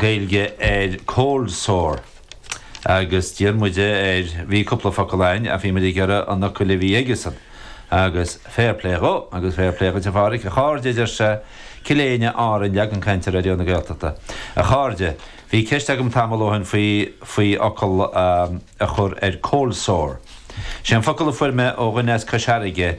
Gaeilge ar cold sore. Agus d'iarr muid air, bhí cúpla focal a'ainn ach bhí muid ag iarraidh an fhocail a bhí aige-san. Agus fair play dhó, agus fair play dhuit a Phádraic, a chairde a deir sé, Cill Éinne, Árainn, leagan cainte Raidió na Gaeltachta. A chairde, bhí ceist agam tamall ó shin faoi, faoi fhocal a chur ar cold sore. Sé an focal a fuair mé ó dhuine as Cois Fharraige,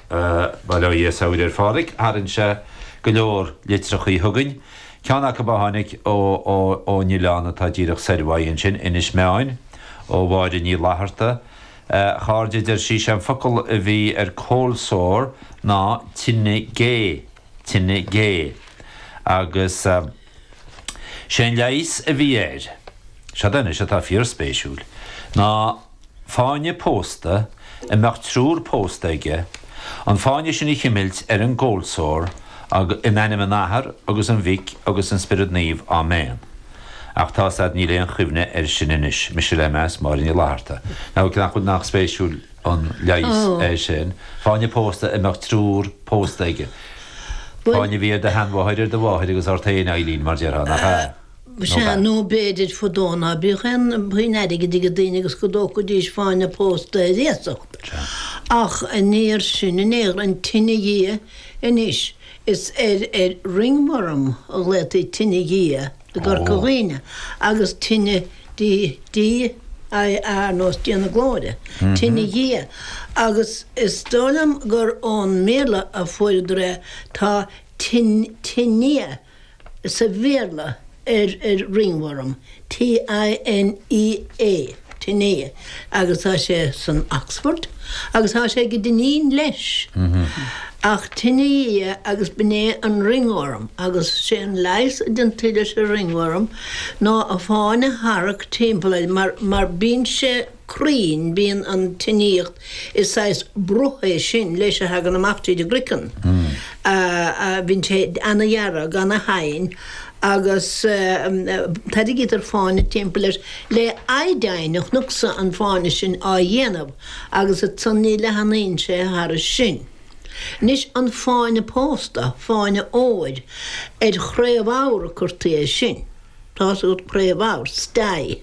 Bail ó Dhia saor ar Phádraig, tharraing sé go leor litreachaí chugainn. Ceann acu a tháinig ón oileán atá díreach soir uaidh ansin, Inis Meáin, ó Mháire Ní Fhlatharta. A chairde, a deir sí, sé an focal a bhí ar cold sore ná tine gé, tine gé. Agus. Sé an leigheas a bhí air, seoda anois atá fíorspéisiúil, ná fáinne pósta a mbeadh triúr pósta aige, an fáinne sin a chimilt ar an gcold sore, In ainm an Athar agus an Mhic agus an Spiorad Naomh. Áiméan. Ach tá's a'd, níl aon chuimhne air sin anois. Mise le meas, Máire Ní Fhlatharta. Now, nach bhfuil, nach spéisiúil an leigheas é sin, fáinne pósta a mbeadh triúr pósta aige. Fáinne a bhí ar do sheanmháthair, ar do mháthair agus ort féin, a Eibhlín, mar déarfá, nach ea? Sea, nó b'fhéidir fadó ná bíodh aon phuinn airgid aige daoine agus go dtógfaidís fáinne pósta ar iasacht. Ach aniar sin aniar, an tine dhia, anois is ar ar ring-worm a ghlaotaí tine dhia. i gCorca Dhuibhne agus tine D-i-a ar nós Dia na Glóire, tine Dhia, agus is dóigh liom gur ón mBéarla a fuaireadar é, tá tinea sa Bhéarla ar ringworm, T-i-n-e-a. Tinea, agus tá sé san Oxford, agus tá sé ag Dinneen leis. Ach tinea agus b'in é an ringworm, agus sé an leigheas a deintí leis an ringworm ná fáinne a tharrac timpeall air mar, mar bíonn sé cruinn, bíonn an tinea, is saghas bruth é sin leis a thagann amach tríd an gcroiceann, bhíonn sé ana dhearg, ana thinn, agus tarraigítear fáinne timpeall air le iodine a chonacsa an fáinne sin á dhéanamh agus ansan ní leathnaíonn sé thairis sin. Anois an fáinne pósta, fáinne óir, ar chraobhabhar a curtaí é sin. Tá's agat craobhabhar, stye.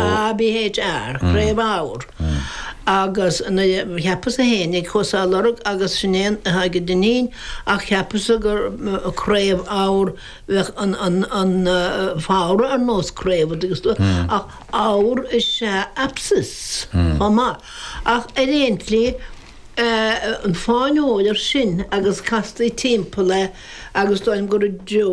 a-b-h-a-r craobhabhar agus cheapas-sa féinig chuas á lorg agus sin é athá ag Dinneen ach cheapas-sa gur craobhabhar bheadh an fabhra ar nós craobh agus tú ach ábhar is ea abscess chomh maith ach ar aon tslí an fáinne óir sin agus castaí timpeall é agus dóigh liom gur i dtreo